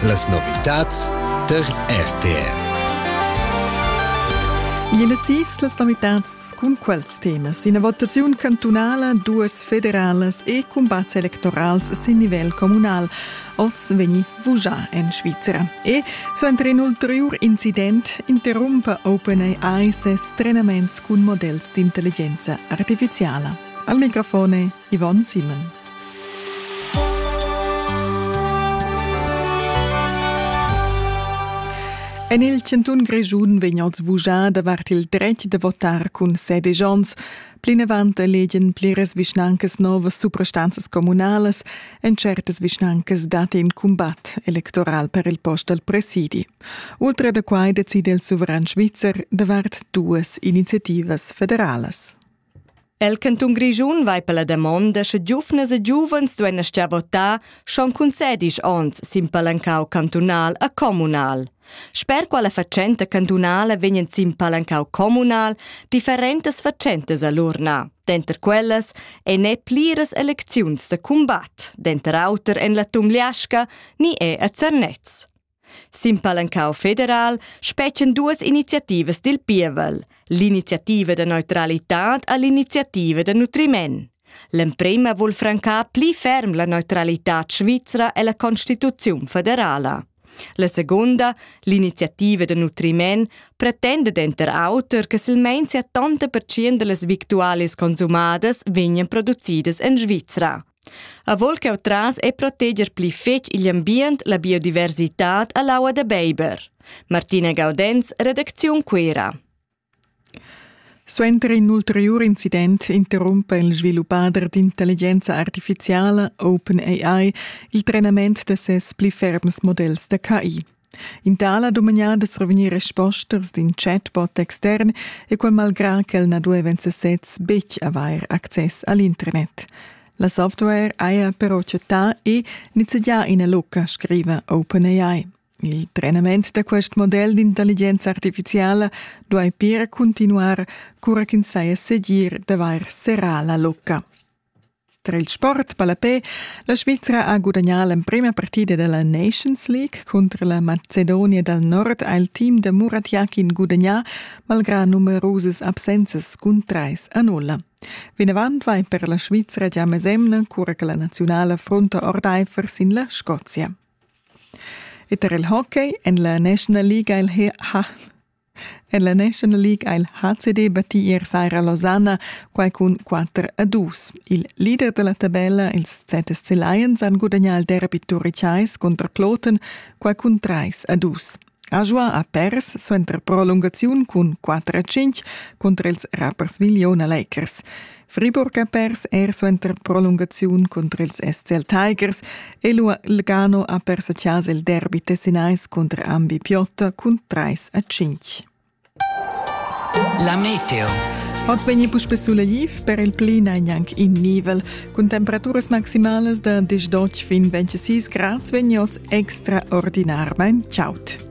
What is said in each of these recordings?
Las novitads der RTR. Iene sis las novitats cun quels temas. Ina votaziun cantunala, duas federalas e cumbats electorals sin nivel communal. Oz vegni vugià en Svizra. E suenter in ulteriur incident interrumpa OpenAI ses trenaments cun models d'intelligenza artificiala. Al microfone Yvonne Simon. En il Chantun Grischun vegn oz vuschà davart il dretg da votar cun sede Jons. Plinavant legen pliras vischnancas novas suprastanzas communalas en certas vischnancas dat in cumbat electoral per il post al presidi. Ultra da quai decide il suveran svizzer davart duas iniziativas federalas. El cantun Grischun vai per la damonda sche giuvnas e giuvens duein astgar votar schon cun sedisch onns sin palancau cantunal a communal. Sper quella fatschenta cantunala vegnan sin palancau communal differentas fatschentas a l'urna. Denter quellas ei ne pliras elecziuns da combat, denter auter en la Tumliasca ni è a Zernez. Sin palancau federal spetgan duas iniziativas dil pievel, l'iniziativa da neutralitad e l'iniziativa da nutriment. L'emprema vul francar pli ferm la neutralitad svizra e la constituziun federala. La segunda, l'iniziativa da nutriment, pretenda denter auter che silmein 70% dallas victualis consumadas vegnan producidas en Svizra. Avol ch'eu tras e proteger pli fetg igl ambient, la biodiversitad e l'aua da beiber. Martina Gaudenz, redacziun Cuera. Suenter in ulteriur incident interrumpa il sviluppader d'intelligenza artifiziala OpenAI il trenament da ses pli ferms modells da KI. In tal ha dumagnar da survegnir respostas d'in chatbot extern e quel malgrà ch'el na dueva en sesez betg avair access a l'internet. La software haja però chattà e nizzegià ina lucca, scriva OpenAI. Il trenament da quest model d'intelligenza artifiziala duai pir cuntinuar cura ch'ins saja segir d'avair serrà la lucca. Tra il sport ballapè la Svizra ha gudagnà l'emprima partida da la Nations League cunter la Macedonia dal Nord ha il team da Muratjakin gudagnà malgrà numerusas absenzas cun trais a nulla. Vinavant vai per la Svizra gia mesemna cura che la naziunala frunta ordaifer sin la Scozia. E tar il hockey en la National League ha En la National League ha il HCD battì ier saira Lausanne, quai cun 4 a 2. Il leader da la tabella, ils ZSC Lions, han gudagnà il derby turicais cunter Kloten, quai cun 3 a 2. Ajoa ha pers suenter prolungaziun cun 4 a 5 cunter ils Rapperswil Jona Lakers. Friburg ha pers er suenter prolungaziun cunter ils SCL Tigers e Lugano ha pers a chasa il derby tessinais cunter Ambi Piotta cun 3 a 5. La meteo. Oz vegni puspe sulla liv per il plina gnanc in nivel. Cun temperaturas maximalas da 10 fin 26 grads vegni oz extraordinarmain chaut.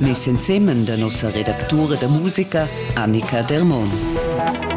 Mes ensemen da nossa redactura da musica Annika Dermon.